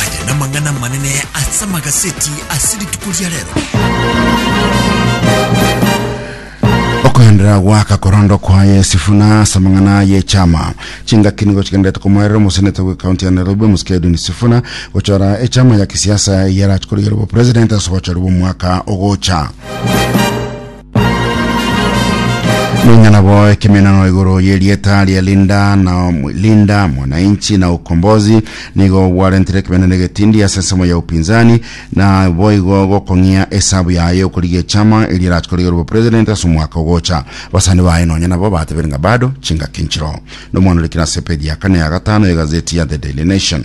Aya namang'ana amanene ase amagaseti ase rituko ria rero. Okoenderera goaka korondo kwaye Sifuna ase amang'ana ye chama chingaki nigo chigenderete komoerera omoseneta bwe kaunti ya Nairobi omosike Edwin Sifuna gochora echama ya kisiasa eyarachikorigerwa obopresident ase ogochorwa omwaka ogocha. Nonya nabo ekemenano igoro yerieta ria Linda na Om- Linda mwananchi na ukombozi nigo gwarentire ekemenano egetindi ase ensemo ya upinzani na boigo gokong'ia esabu yaye okorigia echama eria erachikorigere obo president ase omwaka ogocha basani baye nonya nabo batebire ng'a bado chingaki nchiroo nomwana orikire ase page ya kane ya gatano ya egazeti ya the daily nation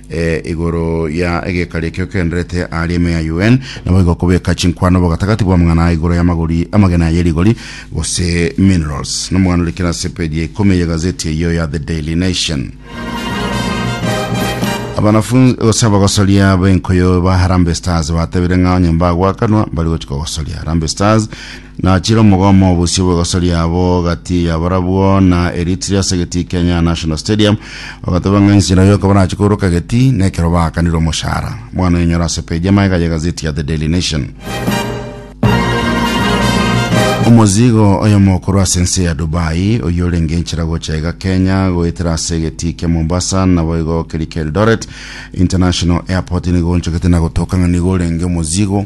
e, igoro ya egekari ekio kenderete aria ime ya UN, naboigo kobeka chinkwano bogatagati bw'amang'ana aa igoro y'amagori amagena aya rigori gose minerals. Nomogano rikere ase page ya ikomi ya gazeti eyio ya The Daily Nation. Abanafunzi gose abagosoria b'enkoyo ba Harambee Stars batebire ng'a onye mbagoakanwa mbari gochika gosoria Harambee Stars Nachire omogomo obosio bw'egoso riabo gati yabarabwo na eritiri ase egetii Kenya National Stadium, bagateba ng'a enchera yoka barache koiroka egetii nekero baakanire omochara. Mwana oyenyore ase page y'amagega y'egazeti ya The Daily Nation. Omozigo oyomo okorwa ase ense ya Dubai oyio orenge enchera gocha iga Kenya goetera ase egetii kia Mombasa naboigo keria kia Eldoret International Airport nigo onchogete na gotoka ng'a nigo orenge omozigo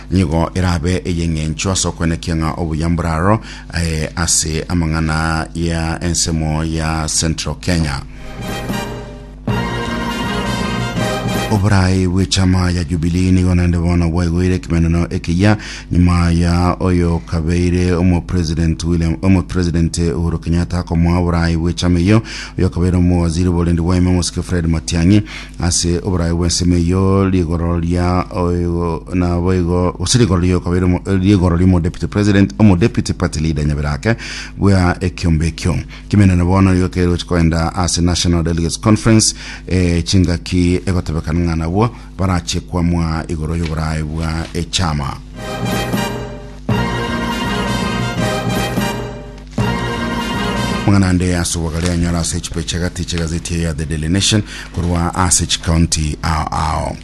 nigo erabe ey'eng'encho ase okwenekia ng'a obuya mboraro eh, ase amang'ana ya ensemo ya Central Kenya. oborai bw'echama ya Jubilee nigo naende bono bwaigoire ekimeneno ekiya nyuma ya oyo kabeire omopresident William omopresident Uhuru Kenyatta akomoa oborai bw'echama eyo oyo kabeire omowaziri borendi bwaime omosike Fred Matiang'i Ase oboraio bw'ensemo eyio rigoro ria oigo naboigo gose rigoro ria okabere omo- eh, rigoro ria omodeputy president omodeputy party leader nyabere ake bwa ekiombe ekio kimenene bono nigo keroche koenda ase national delegates conference eh, chingaki egotebekana ng'a nabwo barache kwamwa igoro y'oboraai bwa echama Mang'anande ase obogare anyore ase echipae chi'agati chi'egazeti eye ya The Daily Nation korwa ase chikaunti ao ao.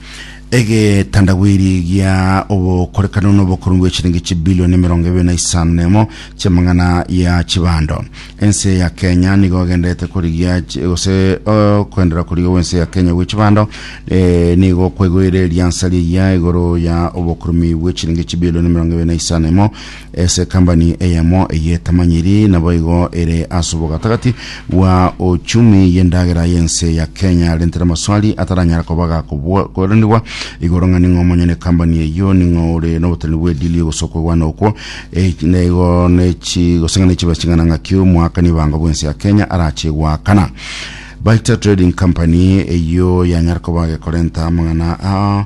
Egetandawiri gia obokorekano na obokorong'u bw'echiringi chibilioni emerongo ebere na isano na emo chi'amang'ana ya chibando. Ense ya Kenya nigo egenderete korigia chi- gose oh, koenderera korigia gw'ense ya Kenya gwe chibando eh, nigo kwaigoire riansa rigiya igoro ya obokorumi bw'echiringi chibilioni emerongo ebere na isano na emo Ase kambani eyemo eyetamanyiri naboigo ere ase obogatagati bwa ochumi y'endagera y'ense ya Kenya arentire amaswali ataranyara koba gakoboranigwa igoro ng'a ning'o omonyene kambani eyio, ning'o ore noboteneri bw'edili gose okwegwana okwo, e, naigo nechi gose ng'a nechibe ching'ana ng'aki omoakani ebango bw'ense ya Kenya arache goakana. Baita Trading Company eyio yanyare koba gekorenta amang'ana aa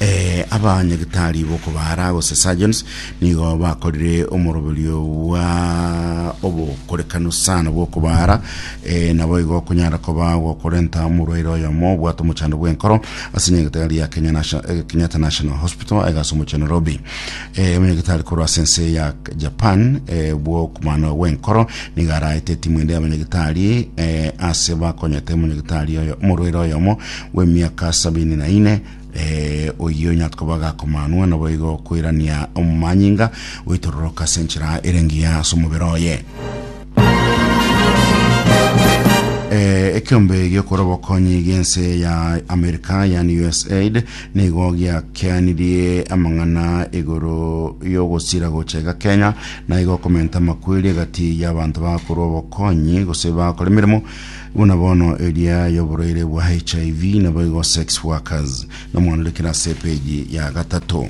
Eh, aba nyagitari bokobara gose surgeons nigo bakorire omoroberio bwa obokorekano sana bwokobara eh, nabo igo okonyara koba gokorenta omorwaire oyomo obwate omochando bw'enkoro ase nyagitari ya Kenya Nation- eh, Kenyatta National Hospital aiga ase omochie Nairobi eh, omonyagitari korwa ase ense ya Japan eh, bwokomano bw'enkoro nigo araete etimu ende y'abanyagitari eh, ase bakonyete omonyagitari oyo omorwaire oyomo bw'emiaka sabini na ine eh, oyio onye akoba gakomanwa naboigo koirania omanyinga goitororoka ase enchera ere engiya ase omobere oye Eh, ekiombe giokora obokonyi giense ya amerika yani usaid nigo giakeanirie amang'ana igoro yogosira gocha iga kenya na igo komenta amakweri egati y'abanto bakorwa obokonyi gose bakora emeremo Buna bono eria y'oborwaire bwa HIV, naboigo sex workers, nomwandorekere ase epeji ya gatato.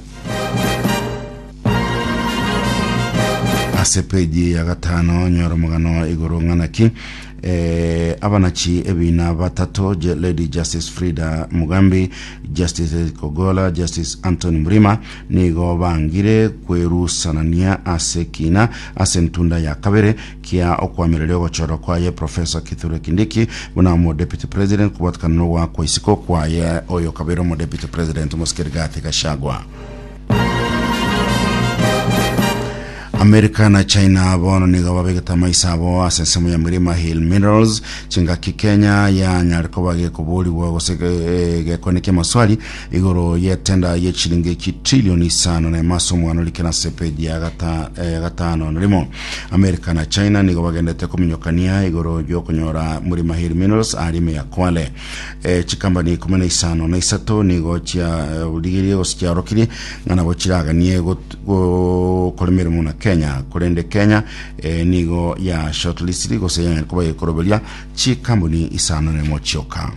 Ase epeji ya gatano nyora omogano igoro ng'ana ki eh, abanachi ebina batato Je- Lady Justice Frida Mugambi, Justice Edith Kogola, Justice Anthony Mrima nigo bangire kwerusanania ase kina ase entunda ya kabere Kia okoamereria ogochorwa kwaye Professor Kithure Kindiki buna omo Deputy President kobwatekana na ogoakwa isiko kwaye oyo okabeire omo Deputy President omosike Rigathi Gachagua. America na China bono nigo babegete amaiso abo ase ensemo ya Mirima Hill Minerals chingaki Kenya yanyare koba gekoborigwa gose eh, gekonekia amaswali igoro yetenda ye chilingi chitrillion isano na emo ase omwana orikera ase page ya gata, eh, gatano na rimo America na China nigo bagendete kominyokania igoro y'okonyora muri Mahiri Minerals ari ime ya Kwale. E, chikambani ikumi na isano na isato nigo chiarigirie gose chiaorokirie ng'a nabo chiraganie got- gokora emeremo na Kenya korende Kenya e, nigo ya shortlistiri gose yang'ani koba yekoroberia chikambuni isano na emo chioka.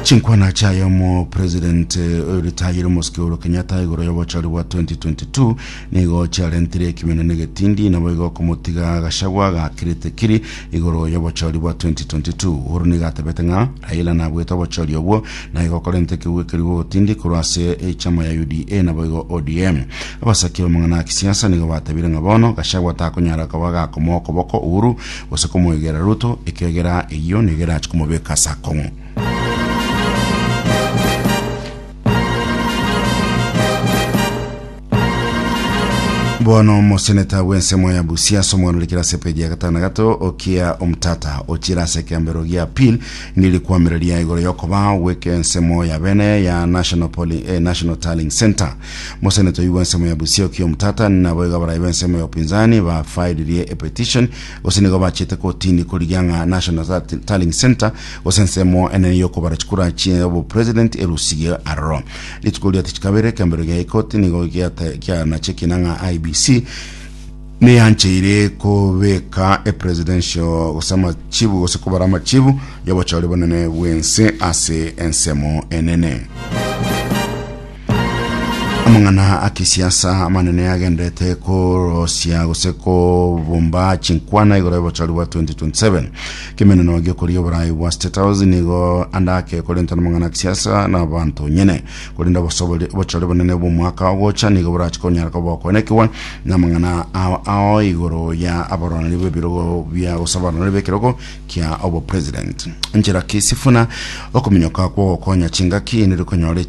Chinkwana chiaye omopresident eh, oyoritayire omosike Uhuru Kenyatta igoro y'obochori bwa 2022 nigo chiarentire ekimina negetindi naboigo okomotiga Gachagua gakirite kiri igoro y'obochori bwa 2022 Uhuru nigo atebete ng'a Raila nabwete obochori obwo naigo okorenta ekegwe ekeri gogotindi korwa ase echama ya UDA naboigo ODM abasaki b'amang'ana ya kisiasa nigo batebire ng'a bono Gachagua takonyara koba gakomoa okoboko Uhuru gose komoegera ruto, ekiagera eyio nigo erache komobeka ase akong'u. Bono omoseneta bw'ensemo ya Busia ase omwanurikire ase epeji ya gatano na gato Okia Omtata ochire ase ekeambero gia appeal niri kwamereria igoro y'okoba gw'ekensemo ya bene ya National, Polling, eh, National Tallying Centre Mosenetoi bw'ensemo ya Busia Okiya Omtata naboigo abarai b'ensemo ya upinzani bafailirie epetition gose nigo bachete kotini korigia ng'a National Tallying- Tallying Centre gose ensemo enene y'okobara chikura chia obopresident erusigwe aroro. Rituko ria tatu kabere ekembero gia ikoti nigo giate- gianachekina ng'a IEBC neyancheire kobeka epresidential gose amachibu gose kobara amachibu y'obochori bonene bw'ense ase ensemo enene. amang'ana a kisiasa amanene agenderete korosia gose kobumba chinkwana igoro y'obochori bwa 2027 kemeneno giokoria oborai bwa state house nigo andake korenta n'amang'ana a kisiasa na abanto nyene korenda obosobori- obochori bonene bw'omwaka ogocha nigo borachi konyara koba okoenekiwa na amang'ana ao ao igoro ya abaroraneri b'ebirogo bia gose abaroraneri b'ekerogo kia obopresident enchera ki sifuna okominyoka kwa ogokonya chingaki nere konyora echi-